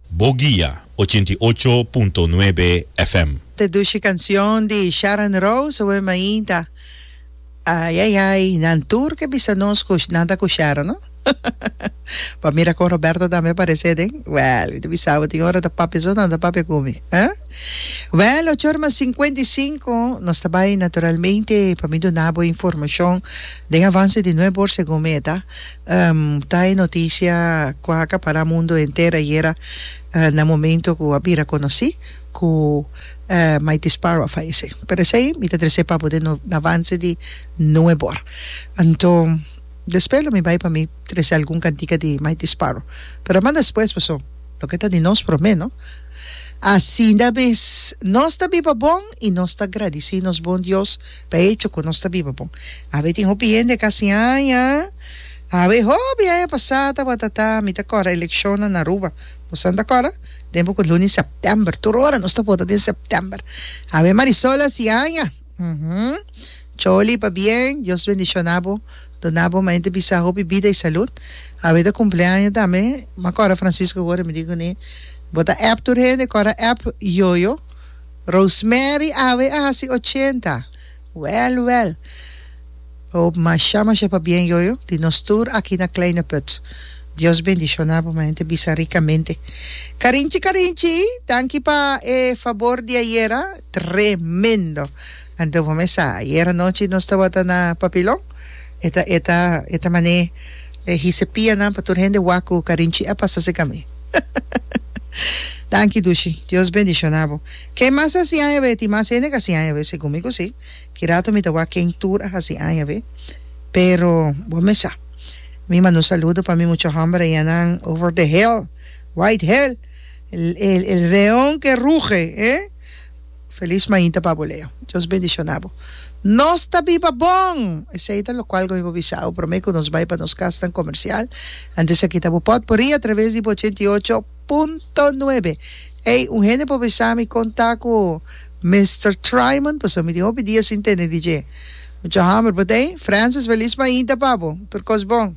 Bo guia ochenta i ocho punto nuebe FM. Te dushi cancion di Sharon Rose wen mainta. Ai ai ai nan tur ke bisa nos cu nan ta cu Sharon no pa mira con Roberto tambe parece den wel mi ta bisabo tin ora ta papia so nan ta papia cu mi eh wel ocho ora mas cincuenta y cinco nos ta bay naturalmente pa mi dunabo informacion den avance di nuebe or segun mi e ta. Ta e noticia cu a acapara mundo henter ayera na momento cu a bira conoci cu Mighty Sparrow a fayece. Pero esey mi ta trece pa bo den no na avance di Noe bor. Anto despues lo mi bay pa mi trece algun cantica di Mighty Sparrow. Pero a manda despues paso loke ta di nos prome no. Asina mes nos ta biba bon y nos ta gradici nos bon Dios. Ta hecho cu nos ta biba bon. Awe tin hopi hende ca sin haña. Awe hopi haña pasá tabata ta mi ta cora eleccionnan na Aruba. Bosonan ta cora? Den poco luni september. Tur ora nos ta vota den september. Awe Marisol a si haña. Uhum. Choli pabien. Dios bendiciona bo. Duna bo mente bisa hopi bida y salud. Awe ta cumpleaño tambe. M'a cora Francisco gora mi di cuni bo ta app tur hende cora app Yoyo. Rosemary awe a hasi ochenta. Wèl, wèl. Hoop masha, masha pabien yoyo di nos tur aki na Kleine Put. Dios bendishona bo mehente bisa rikamente. Karinchi, karinchi, danki pa e fabor di ayera. Tremendo! Anto bo mesa ayer anochi nos tabata na papilon e ta e ta e ta mané e hise pianan pa tur hende waku carinchi a pasa se cami danki dushi Dios bendiciona bo ken mas a hasi aña beti mas hende ca hasi aña be segun mi cosi kirato mi ta wak ken tur a hasi aña be pero bo mesa mi manda un saludo pa mi mucha homber ayan nan over the hill white hill el el el leon que ruge eh. Felis mainta pa bo Leo. Dios bendiciona bo. Nos ta biba bon! Esey ta locual con bo bisa awe prome cu nos bay pa nos casnan comercial. Antes aki ta bo pot por ri a traves di bo ochenta i ocho punto nuebe. Ey, un hende por bisa mi con ta cu Mister Tryman pasobra mi tin hopi dia sin tene di dje. Mucha homber, but ey, Francis, felis mainta pa bo. Tur cos bon.